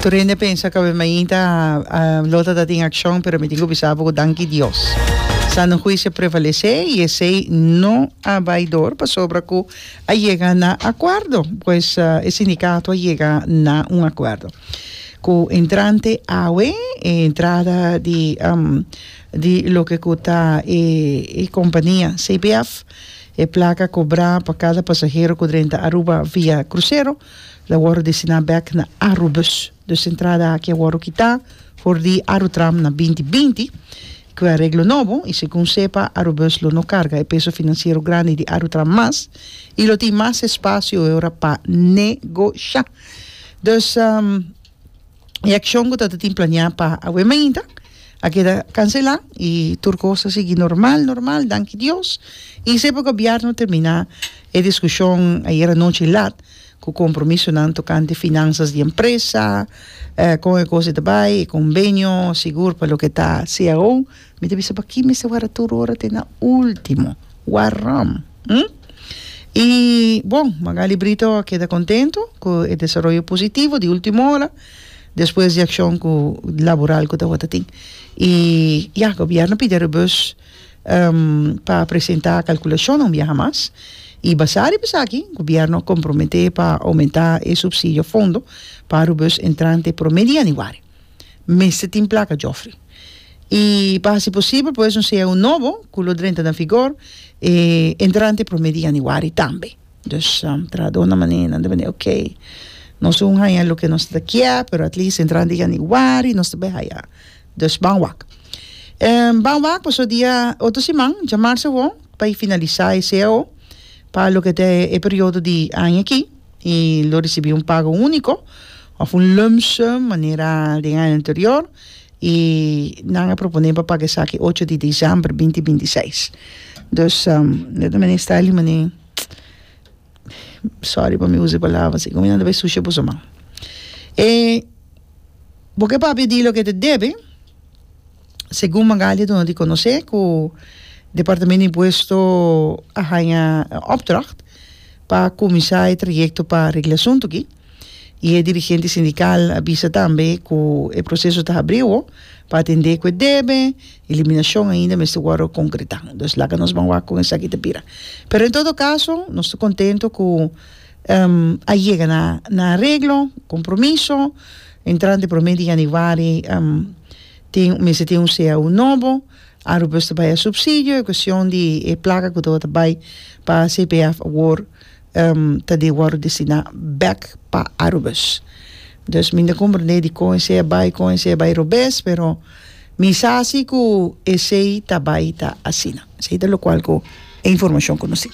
Tur hende pensa kabes mainta Lot a tatin akshon pero mi tin ku bisa bo ku danki Dios sano huisio a prevalesé i esei no a bai dor pasobra ku a yega na akuerdo pues e sindikato a yega na un akuerdo ku entrante awe e entrada di di loke ku ta e kompania CBF e plaka kobrá pa kada pasahero ku drenta Aruba via krusero. La wòru destiná bèk na Aru Bus. Dus entrada aki a wòru kitá for di Aru Tram na binti binti. E kue areglo nobo i segun sepa Aru Bus lo no karga e peso finansiero grandi di Aru Tram mas i lo tin mas espasio e ora pa negoshá. Dus. e accion cu tabata tin planea pa awe mainta a keda cancela y tur cos a sigui normal normal danki Dios y sepa gobierno termina e discusion ayer anochi laat cu compromisonan tocante finanzas di empresa con e cos e ta bay e conbenio sigur pa loke ta CAO Mi ta bisa pakí mester wara tur ora te na último. Waram! Hm? I bon, Magaly Brito a keda kontentu ku e desaroyo positivo di último ora, despues di akshon ku laboral ku tabata tin. I ya, gobièrnu pidi a Rebus pa presentá kalkulashonnan biaha mas, i basá riba esaki gobièrnu a komprometé pa oumentá e supsidio fondo pa Rebus entrante promé di yanüari. mester tin plaka djòfri. I pa hasi posibel pues un CAO nobo ku lo drenta na vigor entrante promé di yanüari tambe. Dus trahadónan manénan ta bini okey, nos aún haña loke nos ta kié pero at least entrante yanüari nos ta bai haña. Dus ban wak. Ban wak pasobra dia otro siman dja marsa awor pa e finalisá e CAO pa loke ta e periodo di aña aki. i lo risibí un pago úniko òf un lump sum manera den aña anterior i nan a proponé pa paga esaki ocho di diciember binti binti i seis dus nan ta mester sta limané sòri pa mi usa e palabra así komo nan ta bai sushi boso man e bo ke papia di loke ta debe Segun Magalia duna di konosé ku Departamento di Impuesto a haña e opdracht pa kuminsá e trayekto pa regla e asuntu aki i e dirigente sindikal a bisa tambe ku e proseso ta habrí awo pa atendé ku e debe eliminashon ainda mester wòrdu konkretá. Entonces laga nos ban wak kon esaki ta bira. Pero en todo kaso nos ta kontentu ku a yega na areglo, kompromiso, entrante promé di yanüari Tin, mester tin un CAU nobo, Aruba mester bai a subsidio, e cuestion di e placa cu tabata bai pa CPF awor ta di wordo destina back pa Arubus. Dus mi no ta comprende di con esey a bai, con esey a bai robes, pero mi sa si cu esey ta bai ta asina. Esey ta locual cu e informacion cu nos tin.